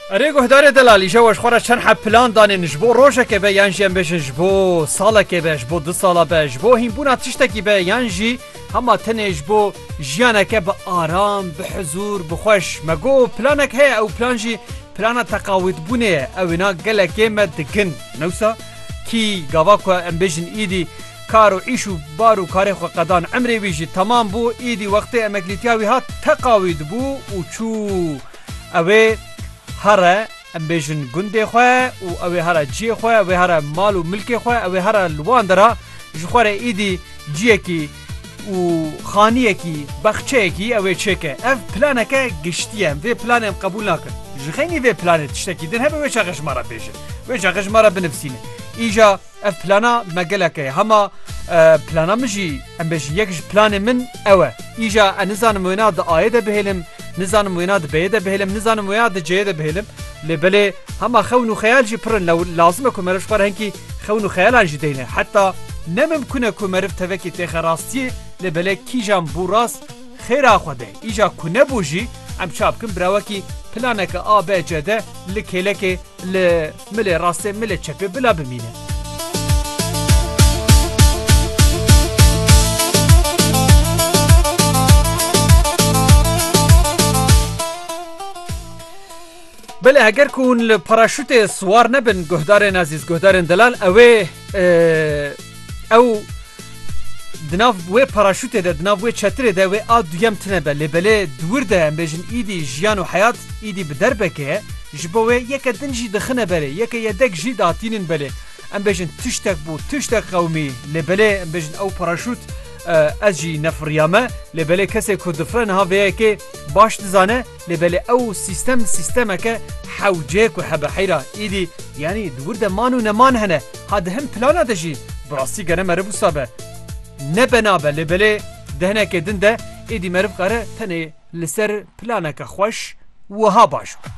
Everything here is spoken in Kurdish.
Erê guhdarê delal îşev weş xwe re çend heb plan danên ji bo rojekê be yan jî em bêjin ji bo salekê be ji bo du sala be ji bo hînbûna tiştekî be yan jî hema tenê ji bo jiyaneke bi aram bi hizûr bi xweş me got planek heye ew plan jî plana teqawîtbûnê ye ew wina gelekê me digin newsa kî gava ku em bêjin îdî Kar û îş û bar û karên xwe qedan. Emrê wî jî temam bû. Îdî wextê emeklîtiya wî hat teqa wî dibû û çû. Ew ê here em bêjin gundê xwe û ew ê here ciyê xwe, ew ê here mal û milkê xwe, ew ê here li wan dera ji xwe re îdî ciyekî û xaniyekî, bexçeyekî ew ê çêke. Ev planeke giştî ye. Em vê planê em qebûl nakin. Ji xeynî vê planê tiştekî din hebe wê çaxe ji me re bêjin. Wê çaxe ji me re binivîsîne. Îja. Ev plana me gelek e. Hema plana min jî em bêjin yek ji planên min ew e. Îja e nizanim wêna di Ayê de bihêlim, nizanim wêna di B'yê de bihêlim, nizanim wêna di C'yê de bihêlim. Lê belê hema xewn û xeyal jî pir in lew lazim e ku meriv ji xwe re hinkî xewn û xeyalan jî deyne. Heta ne mimkun e ku meriv tevekî têxe rastiyê lê belê kîjan bû rast xêra xwe de. Îja ku nebû jî em ça bikin birawekî planeke A, B, C de li kêlekê li. Milê rastê milê çepê bila bimîne. Belê heger ku hûn li paraşûtê siwar nebin guhdarên ezîz guhdarên delal ewê Ew di nav wê paraşûtê de, di nav wê çetirê de wê a duyem tine be. Lê belê di wir de em bêjin îdî jiyan û heyat îdî bi derbeke ye. Ji bo wê yeke din jî dixine berê, yeke yedek jî datînin belê. Em bêjin tiştek bû, tiştek qewimî. Lê belê em bêjin ew paraşût ez jî nefiriyame. Lê belê kesê ku difire niha vê yekê baş dizane. Lê belê ew sîstem sîstemeke hewce ku hebe heyra îdî yanî di wir de man û neman hene ha di hin plana de jî bi rastî gere meriv wisa be ne bena be lê belê di hinekê din de îdî meriv kare tenê li ser planeke xweş wiha baş be.